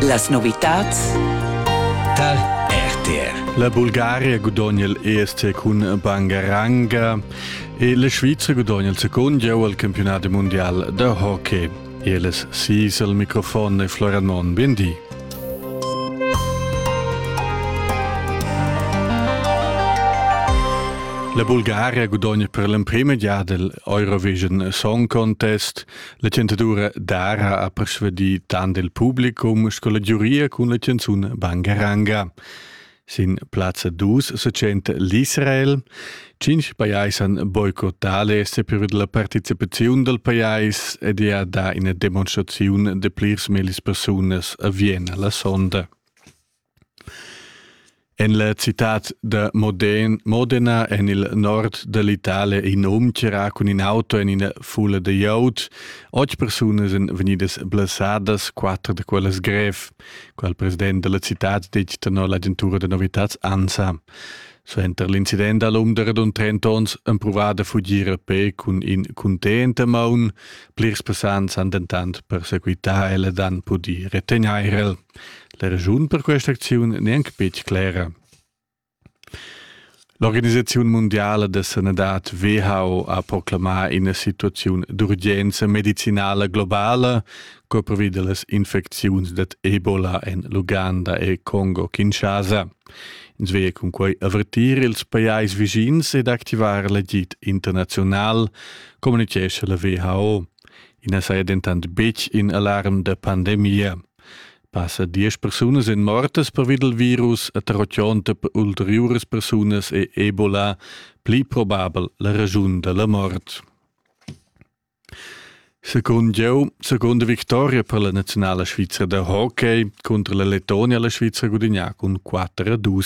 Las novitads Tal RTR. La Bulgaria gudogna l'EST cun Bangaranga e la Svizra gudogna il secund gieu al campionat mondial da hockey. Eles sis al microfon e Floranon Bindi. La Bulgaria gudogna per l'emprima giada l'Eurovision Song Contest. La chanzadura Dara ha persuadì tant il publicum sco la giuria cun la chanzun Bangaranga. Sin plazza 2 se tschenta l'Israel. Cinc pajais han boicottà l'este per la participaziun dal pajais ed è er da ina demonstraziun de plirs millis persunas a Vienna la sonda. En la citad da Moden, Modena en il nord da l'Italia in um tira cun in auto en ina fulla da iot. Otg persunas èn vegnidas blessadas, quatter da quellas grev. Quel president della citad detg tenor l'agentura da novitads ANSA. Suenter l'incident da l'um de radun 30 onns han provat da fugir a pe cun in contenta maun. Plirs persans han dentant perseguità e le dan pudi retegnair el. La raschun per questa acziun n'è anc betg clera. L'organisaziun mundiala da sanadad WHO ha proclamà ina situaziun d'urgenza medicinala globala co pervi da las infecziuns dad Ebola en l'Uganda e Congo-Kinshasa. Ins veglia cun quai avertir ils pajais vischins ed activar l'agid internaziunal, communitgescha la WHO. I na saja dentant betg in alarm da pandemia. Passa diesch persunas èn mortas pervi dal virus e tar otg'onta ulteriuras persunas è Ebola pli probabel la raschun da la mort. Secund jau, seconda victoria per la naziunala svizra da hockey contro la Letonia la Svizra gudignà cun 4 a 2.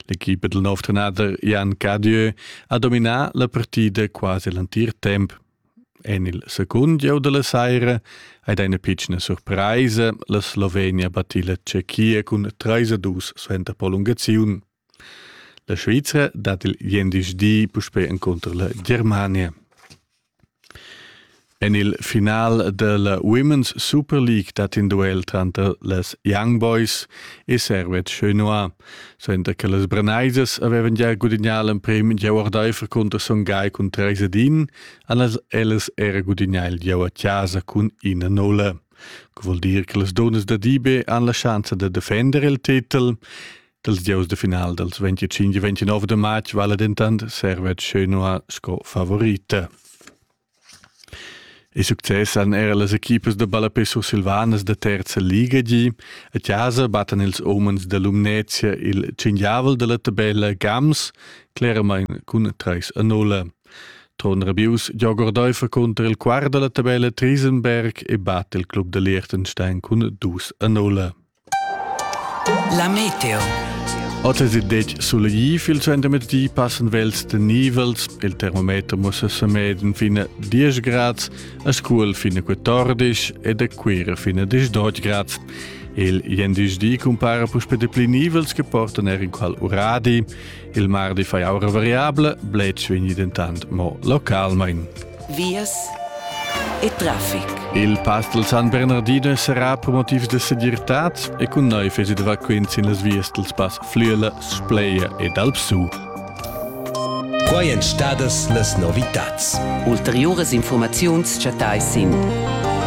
L'equipa del nov trenader Jan Cadieu ha dominà la partida quasi l'entir temp. En il secund gieu da la saira ei ina pitschna surpraisa. La Slovenia batti la Tschechia cun treis a dus suenter prolungaziun. La Svizra dat il gendischdi puspei encunter la Germania. En il final della Women's Super League dat in duel tranter les Young Boys e Servet Chenois. Senta che las Breneisas avevan gia gudignà l'emprim in gieu ordaifer cunter Son Gai cun treis ed in, allas ellas era gudignà il gieu a casa cun ina nulla. Que vuol dir che las donas da Dibe han la schanza da defender il titel. Dals gieus de final dals 25 e 29 de matg vala dentant Servet Schönua sco favorita. Il success han era las equipas da ballapè sursilvanas da terza liga gì. A chasa battan ils umens da Lumnezia il cinghiavel dalla tabella Gams cleramain cun 3 a 0. Ton Rabius giogordeufa cunter il quart dalla tabella Triesenberg e batt il club da Liechtenstein cun 2 a 0. La meteo. Otas e detg sulegif il centemerdi passen vels de nivels, il termometer mussa semeden fine 10 grads, a Scuol fine 14 ed a Cuira fine 18 grads. Il jendisch di compara puspe de pli nivels che portan er in qual uradi. Il mardi fai aura variabla, bletsch vegni dentant mo localmain. Vias e traffic. Il pastel San Bernardino sarà per motivs de segirtad e cun noi fesi de vaquins in las vias dels pass Flüela, Spleia ed Alpsu. Quai èn stadas las novitads. Ulteriuras informaziuns chattai sin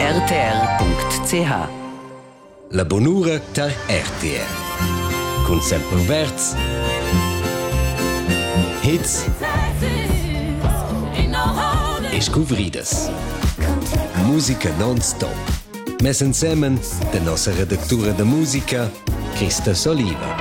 rtr.ch. La bunura tar RTR cun Sempre Verds hits e scuvridas. Musica non-stop. Mess ensemen de nossa redactura de musica, Christa Soliva.